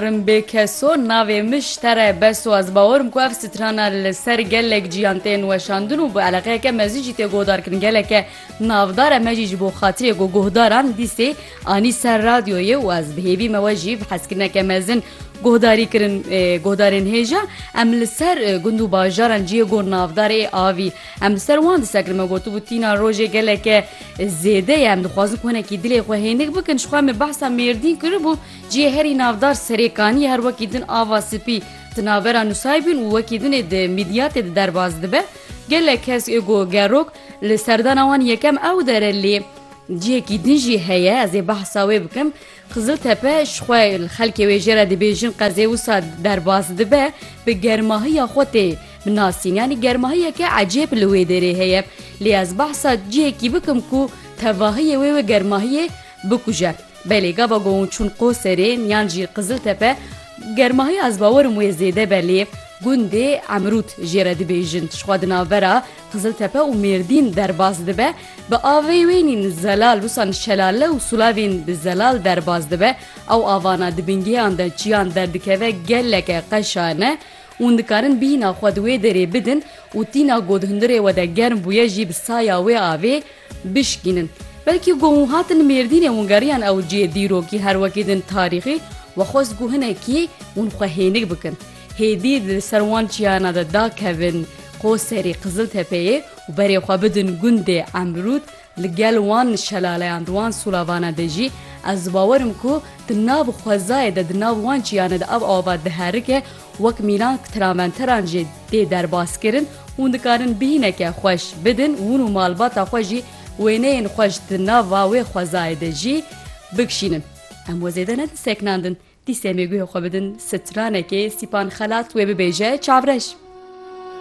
Rimbê keso, navê min Şter e. Bes û ez bawer im ku ev strana li ser gelek cîyan tên weşandin û bi eleqeyeke mezin jî tê guhdarkirin. Geleke navdar e me jî ji bo xatirê ku guhdaran dîsê anî ser radyoyê û ez bi hêvî me we jî bi hezkirineke mezin guhdarî kirin guhdarên hêja. Em li ser gund û bajaran cihê ku navdar ê avî em li ser wan disekirin. Me gotibû tîna rojê geleke zêde ye. Em dixwazin ku hinekî dilê xwe hênik bikin. Jixwe em ê behsa Mêrdîn kiribû. Cihê herî navdar Serêkaniyê her wekî din ava spî di navbera Nusaybîn û wekî din ê di mîdiyatê de derbas dibe. Gelek kes ê got gerok li serdana wan yekem ew dere lê cihekî din jî heye ez ê behsa wê bikim. Qiziltepe ji xwe li xelkê wê jê re dibêjin qezê wisa derbas dibe bi germahiya xwe tê binasîn yanî germahiyeke ecêb li wê derê heye lê ez behsa cihekî bikim ku tevahiyê wê wê germahiyê bikuje. Belê gava ku hûn çûn Qoserê yan jî Qiziltepe germahiya ez bawer im wê zêde be lê gundê Emrût jê re dibêjin tiştxwa di navbera Qiziltepe û Mêrdîn derbas dibe bi avê wê nîn zelal wisan şelale û sulavên bi zelal derbas dibe ew avana di bingêhan de çiyan derdikeve geleke qeşa ne hûn dikarin bîhna xwe di wê derê bidin û tîna ku di hundirê we de germ bûye jî bi saya wê avê bişkînin. Belkî ku hûn hatin Mêrdînê hûn geriyan ew cihê dîrokî her wekî din tarîxî we xwest ku hinekî hûn xwe hênik bikin. Hêdî di ser wan çiyana de dakevin Qoserî, Qiziltepeyê û berê xwe bidin gundê Emrûd li gel wan şelaleyan di wan sulavana de jî ez bawer im ku di nav xwezayê de di nav wan çiyana de ev ava diherike Wek mîna ku traventeran jê tê derbaskirin, hûn dikarin bihîneke xweş bidin, hûn û malbata xwe jî wêneyên xweş di nava wê xwezayê de jî bikşînin. Em we zêde ne diseknandin, dîsê mêguhê xwe bidin stranekê, sîpan xelat wê bibêje çavreş.